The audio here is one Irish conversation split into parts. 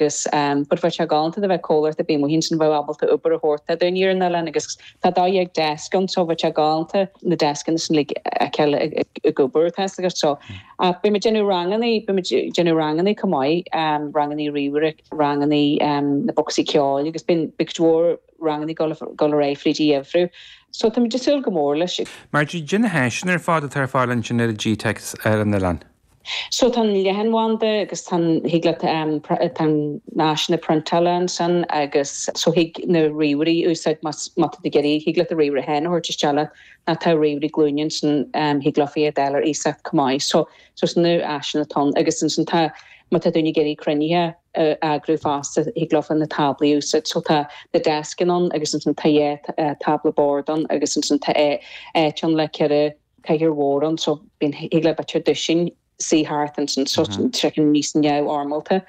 agus bud bheadh sé galánta dá mbeadh comhlacht ar bith amuigh ansin a bheadh ábalta obair a thabhairt do mhuintir an oileáin agus tá dhá dhéag deasc anso bheadh sé galánta na deascanna sin a fheiceáil ag obair tá a fhios agat so ach beimid ag déanamh ranganna beimid ag déanamh ranganna chomh maith ranganna ríomhaire ranganna na bocsaí ceoil agus beidh cuid mhór ranganna ag gabháil ar aghaidh fríd an gheimhreadh so táimid ag súil go mór leis. Marjorie, caidé na háiseanna ar fad atá ar fáil ansin ar an Gteic ar an oileán. So tá an leathanbhanda agus tá an, thig leat, tá na háiseanna priontála ansan agus so thig na ríomhairí a úsáid más, má tá tú ag iarraidh, thig leat do ríomhaire féin a thabhairt isteach leat, ná tá ríomhairí glúine ansan, thig leofa iad a fháil ar iasacht chomh maith. So, so sin na háiseanna atá ann agus ansan tá, má tá daoine ag iarraidh cruinnithe a eagrú fosta thig leofa na táblaí a úsáid. So tá na deascaí ann agus ansan tá dhá thábla boird ann agus ansan tá áit ann le ceithre, cathaoir mhór ann so bíonn thig le bit ar dtúis sin suí thart ansin so sroicheann níos neamhfhoirmeálta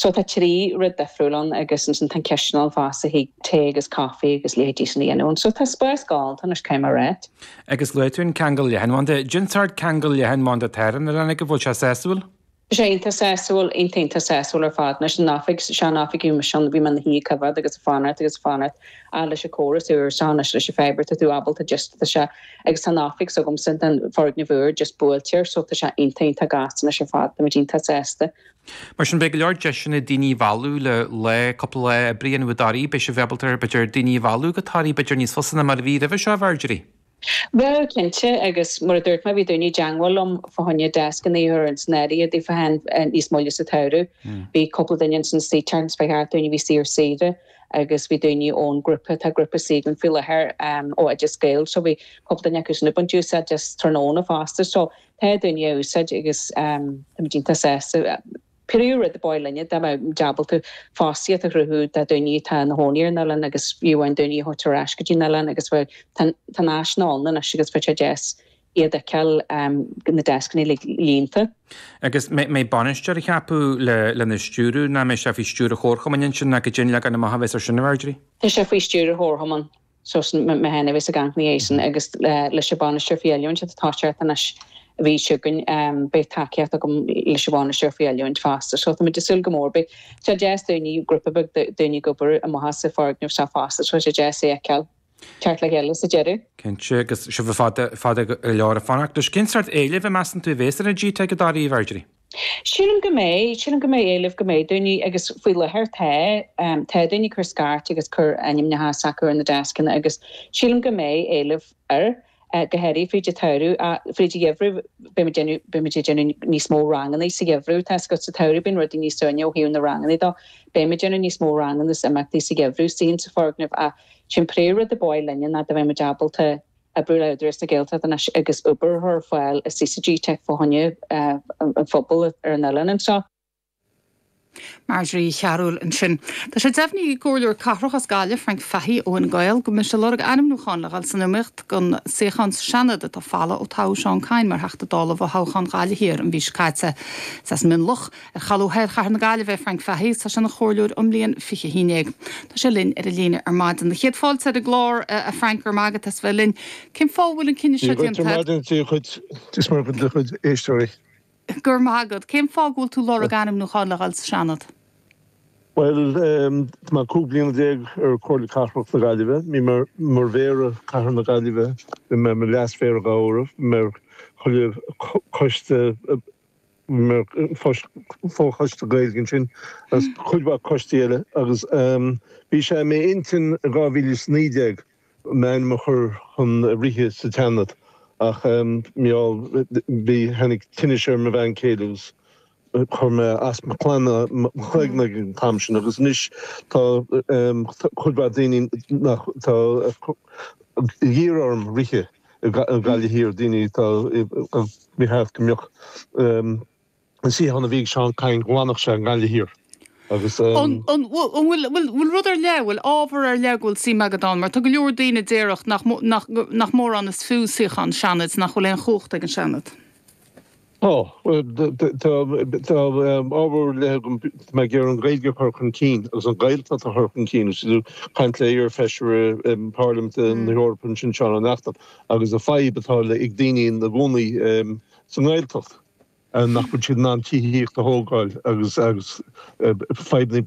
so tá trí rud difriúil ann agus ansin tá an chisteanach ann fosta thig tae agus caife agus leithéidí sin a dhéanamh ann so tá spás galánta anois caithfidh mé a ráit. Agus luaigh tú an ceangal leathanbhanda. Caidé an sórt ceangal leathanbhanda atá ar an oileán agaibh an bhfuil sé sásúil? Tá sé iontach sásúil, iontach iontach sásúil ar fad, anois, an oifig, sean oifig s'againne ansin, bhí mé ina shuí ag coimhead agus ag fanacht agus ag fanacht, ah, leis an córas úr so anois, leis an fibre, tá tú ábalta just, tá sé, agus tá an oifig s'agamsa, tá an foirgneamh úr just buailte air so tá sé iontach iontach gasta anois ar fad, táimid iontach sásta. Mar sin, beidh go leor deiseanna daoine a mhealladh le lá, cúpla lá oibre a dhéanamh i dToraigh, beidh sibh ábalta, b'fhéidir, daoine a mhealladh go Toraigh, b'fhéidir, níos fusa ná mar a bhí roimhe seo, a Mharjorie? Beidh, cinnte, agus mar a dúirt mé, bhí daoine i dteangmháil liom fá choinne deascanna a chur in áirithe daofa féin níos moille sa tsamhradh. Bhí cúpla duine ansin an tseachtain seo chuaigh thart, daoine a bhí anseo ar saoire, agus bhí daoine ón grúpa, tá grúpa anseo againn faoi láthair ó Oideas Gael, so bhí cúpla duine acu sin ag baint úsáid as tráthnóna fosta, so tá daoine á úsáid agus táimid iontach sásta. B'fhéidir rud ba mhaith linne dá mbeadh muid ábalta fostaíocht a chruthú do dhaoine atá ina chónaí ar an oileán agus fiú amháin daoine a thabhairt ar ais go dtí an oileán agus tá na háiseanna ann anois agus bheadh sé deas iad a fheiceáil, na deascannaí uilig líonta. Agus an mbeidh bainisteoir á cheapadh lena stiúradh, nó an mbeidh sé faoi stiúir an chomharchumainn ansin nó caidé an leagan amach a bheas ar sin, a Mharjorie? Tá sé faoi stiúir an chomharchumainn. So is mé a bheas ag amharc ina dhiaidh sin agus leis an Bhainisteoir faoi Oiliúint atá tosaithe anois san oifig s'againn beidh tacaíocht agam leis an Bhainisteoir faoi Oiliúint fosta. So tá muid ag súil go mór. Beidh sé deas daoine, grúpa beag daoine ag obair amach as an foirgneamh seo fosta so tá sé deas é a fheiceáil ag teacht le chéile sa deireadh. Cinnte agus sibh fada fada go leor ag fanacht leis. Cén sórt éilimh a mheasann tú a bhéas ar an GTeic i dToraigh, a Mharjorie? Sílim go mbeidh. Sílim go mbeidh éileamh, go mbeidh daoine, agus faoi láthair tá. Tá daoine ag cur scairt agus ag cur ainmneacha s'acu ar na deascanna agus sílim go mbeidh éileamh air, go háirithe fríd an tsamhradh. Ach fríd an gheimhreadh beidh muid déanamh, beidh muid ag déanamh níos mó ranganna sa gheimhreadh. Tá's agat sa tsamhradh bíonn rudaí níos ciúine ó thaobh na ranganna de. Beidh muid déanamh níos mó ranganna is imeachtaí sa gheimhreadh, ansin sa foirgneamh ach sin an príomh rud ab fhearr linne ná go mbeidh muid ábalta, oibriú le hÚdarás na Gaeltachta anois agus obair a chur ar fáil i gteic fá choinne an phobail ar an oileán anseo. Marjorie Uí Chearbhaill ansin. Tá sé deimhnithe ag Comhairleoir Cathrach as Gaillimh, Frank Fahy ó Fhine Gael, go mbeidh sé ag lorg ainmniúcháin le dhul san iomaíocht don suíochán sa Seanad atá folamh ó toghadh Seán Kyne mar Theachta Dála i bhfothoghchán Ghaillimh Thiar an mhí seo caite. Is as Mionloch Ar cholbha thoir chathair na Gaillimhe é Frank Fahy, tá sé ina chomhairleoir ón mbliain fiche a haon déag. Tá sé linn ar an líne ar maidin. Tá céad fáilte romhat ar an gclár, a Frank, go raibh maith agat as bheith linn. Cén fáth a bhfuil an cinneadh seo déanta agat? Dia dhuit is do chuid éisteoirí. Go raibh maith agat. Cén fáth go bhfuil tú ag lorg ainmniúcháin le dhul sa Seanad? Bhuel, tá mé cúig bliana déag ar Chomhairle Cathrach na Gaillimhe. Bhí mé mar Mhéara Chathair na Gaillimhe, bhí mé mar Leas-Mhéara dhá uair, bhí mé ar chuile choiste, fochoiste Gaeilge ansin agus cuid mhaith coistí eile agus bhí sé i m'intinn i 2019 m'ainm a chur chun rith sa tSeanad ach mí-ádh bhí tháinig tinnis ar mo bhean céile agus chuir mé as mo chlann mo chloigne ag an t-am sin agus anois tá cuid mhaith daoine nach tá ag iarraidh orm rith i nGaillimh Thiar, daoine atá ag ceapadh go mbeadh an suíochán a bhí ag Seán Kyne, go bhfanfadh sé i nGaillimh Thiar agus. An bhfuil rud ar leith, an bhfuil ábhar ar leith go bhfuil suim agat ann? Mar tá go leor daoine a déarfadh nach mórán is fiú suíochán Seanaid, nach bhfuil aon chumhacht ag an Seanad. Tá. Tá ábhar ar leith agam mar gheall ar an Ghaeilge a chur chun cinn agus an Ghaeltacht a chur chun cinn. Bhí tú ag caint le iar-fheisire Parlaiminte na hEorpa ansin, Seán Ó Neachtain, agus an fadhb atá ag daoine ina gcónaí sa nGaeltacht, nach bhfuil siad in ann tithíocht a thógáil agus fadhbanna